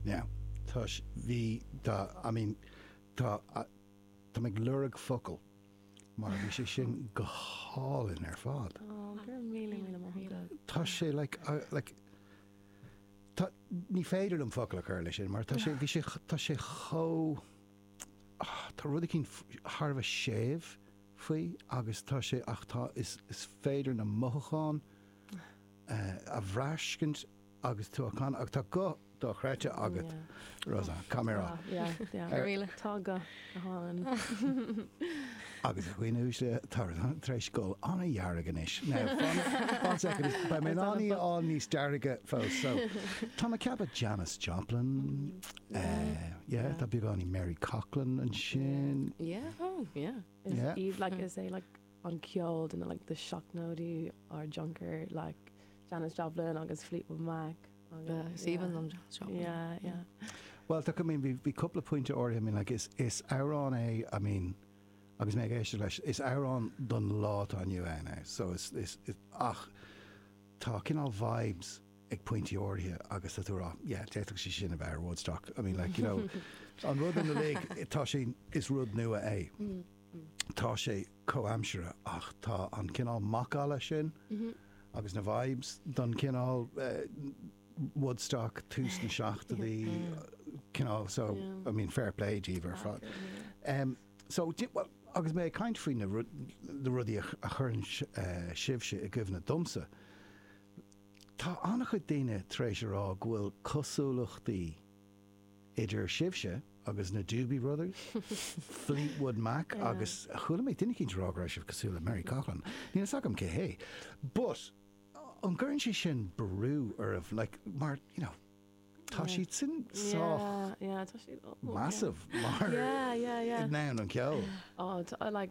Now, tá si, bhí, tá, I mean, tá, tá mé ag lorg focal mar bhí sé sin go hálainn ar fad. Ó, go raibh míle, míle maith agat. Tá sé, like, I, like, tá, ní féidir liom focal a chur leis sin mar tá sé, bhí sé, tá sé chomh, ah, tá rud eicínt thar a bheith séimh faoi agus tá sé, ach tá, is, is féidir na mothúcháin, a bhraistint agus tú á chanadh agus tá guth dochreidte agat Rosann. Come here on. Yeah, yeah. Really? Tá guth go hálainn. Agus a dhaoine uaisle tá Rosann tar éis dul an-dearg anois. Now, fun, fun second, beidh mé in ann í a fháil níos deirge fós. So, tá mé ag ceapadh Janis Joplin, eh, yeah, tá beagáinín Mary Coughlan ansin. Yeah, oh, yeah. Is Yeah. í, like, is é, like, an ceol den like the shock melody or junker like Janis Joplin agus Fleetwood Mac agus yeah Even them Janis Joplin yeah yeah. Bhuel tá I mean bhí cúpla pointe áirithe I mean like is is amhrán é I mean agus mé ag éisteacht leis is amhrán don lá atá inniu ann é so is is is ach tá cineál vibes ag pointí áirithe agus tá tú ag rá yeah d'fhéadfadh sé sin a bheith ar Woodstock I mean like you know an rud ina lig tá sé is rud nua é. tá sé comhaimseartha ach tá an cineál macalla sin agus na vibes den cineál Woodstock tús na seachtadaí cineál so I mean fair play daoibh ar fad. So bhuel agus mé ag caint faoi na rudaí a chuireann sibhse i gcuimhne domsa tá an-chuid daoine tar éis a rá go bhfuil cosúlachtaí idir sibhse agus na Doobie Brothers, Fleetwood Mac agus chuala mé duine eicínt ag rá go raibh sibh cosúil le Mary Coughlan. Níl a fhios agam cé hé. But an gcuireann sé sin brú oraibh like, mar you know, Tá yeah. siad sin sách yeah, yeah, massive mar yeah, yeah, yeah. i ndomhan an cheoil. Oh, I like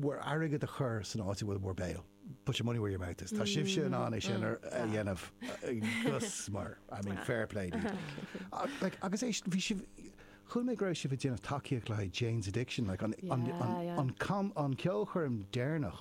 bhur n-airgead a chur san áit a bhfuil bhur mbéal, put your money where your mouth is, tá sibhse in ann é sin a dhéanamh go smior, I mean fair play to you. Agus é sin, bhí sibh, chuala mé go raibh sibh ag déanamh tacaíocht le haghaidh Jane's Addiction, like an cheolchoirm deireanach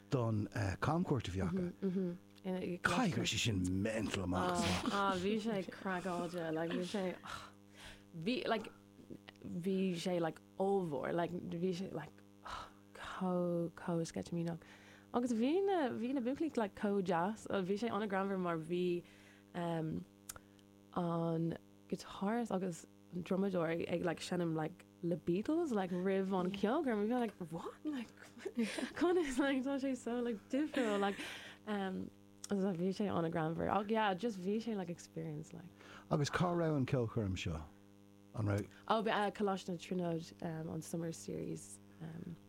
den camchuairt a bhí acu. Caithfidh go raibh sé sin mental amach is amach. Á bhí sé craiceáilte, like bhí sé, bhí like, bhí sé like, ollmhór, like bhí sé like chomh chomh sceitimíneach agus bhí na bhí na buachaillí like chomh deas, bhí sé ana greannmhar mar bhí ehm an guitarist agus an drumadóir ag ag like seinm like le Beatles like roimh an ceolchoirm and we were like what like conas like tá sé so like difriúil like ehm so bhí sé ana greannmhar ach yeah just bhí sé like experience like. Agus cá raibh an ceolchoirm seo? An raibh? Ó b'ea, Coláiste na Tríonóid, an Summer Series,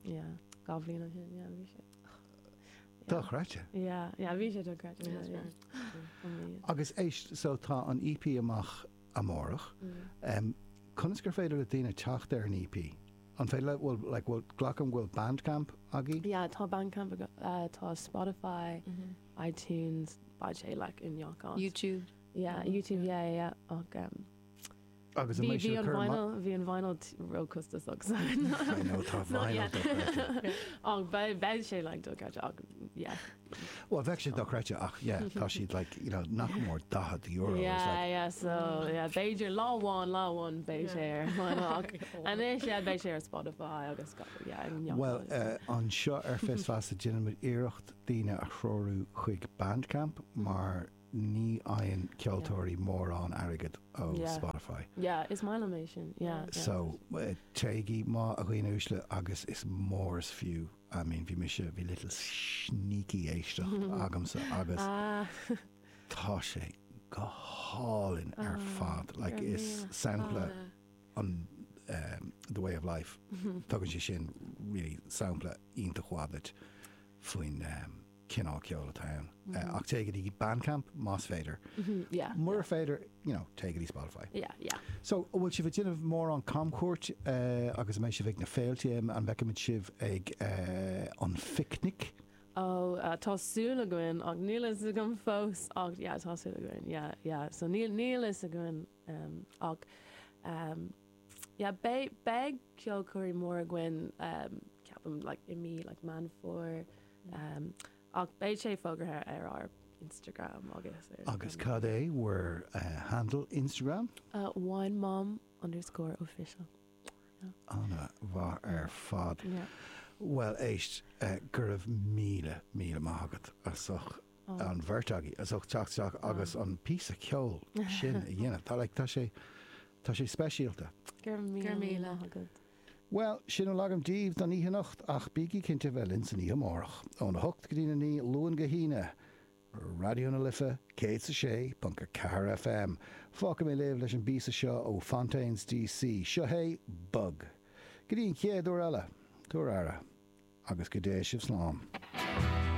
yeah, dhá bhliain ó shin, yeah, bhí sé, yeah. Dochreidte. Yeah, yeah, bhí sé dochreidte, yeah, yeah. Agus é, so tá an EP amach amárach, conas gur féidir le daoine teacht ar an EP? An féidir le, bhfuil, like, bhfuil, glacaim go bhfuil Bandcamp agaibh? Yeah, tá Bandcamp againn, tá Spotify, iTunes, beidh sé, like, i ngach áit. YouTube. Yeah, YouTube, yeah, yeah, yeah, ach, agus an méid sin a. Bhí an vinyl róchostasach I know, tá vinyl dochreidte. Ach bheadh sé like dochreidte ach yeah. Bhuel bheadh sé dochreidte ach yeah tá siad like you know nach mór €40. Yeah yeah so yeah b'fhéidir lá amháin lá amháin beidh sé ar vinyl ach anois yeah beidh sé ar Spotify agus yeah i ngach Bhuel anseo ar Fios Feasa déanaimid iarracht daoine a threorú chuig Bandcamp mar Ní fhaigheann ceoltóirí mórán airgead ó Spotify. So, téigí, más ea a dhaoine uaisle, agus is mór is fiú, I mean, bhí mise, bhí little sneaky éisteacht agamsa agus tá sé go hálainn ar fad. Like, is sampla an The Way of Life, tugann sé sin really sampla iontach mhaith duit faoin. cineál ceoil atá ann ach téigí go dtí Bandcamp más féidir. Mura féidir, you know, téigí go dtí Spotify. So, an bhfuil sibh ag déanamh mórán camchuairt agus an mbeidh sibh ag na féilte? An bhfeicfimid sibh ag an phicnic? Oh, tá súil againn ach níl a fhios agam fós ach yeah, tá súil againn yeah, yeah. So, níl, níl a fhios againn ach. yeah beidh beidh ceolchoirm mór againn um, ceapaim like, i mí like, Meán Fómhair mm. um, ach beidh sé fógartha ar ár Instagram agus ar agus cad é bhur uh, handle Instagram? Uh, Wine mom underscore official. Ana mhaith ar fad. Well éist uh, go raibh míle míle maith agat a soch an bheirt agaibh as ucht teacht isteach agus an píosa ceoil sin a dhéanamh. Tá like tá sé tá sé speisialta. Go raibh míle míle maith agat. Bhuel, sin a bhfuil agam daoibh don oíche anocht ach bígí cinnte a bheith linn san oíche amárach, óna hocht go dtí'n a naoi, Luan go hAoine, ar Raidió na Life 106.4 FM. Fágfaidh mé libh leis an bpíosa seo ó Fontaines D.C. Seo é Bug. Go dtí an chéad uair eile, tabhair aire agus go dté sibh slán.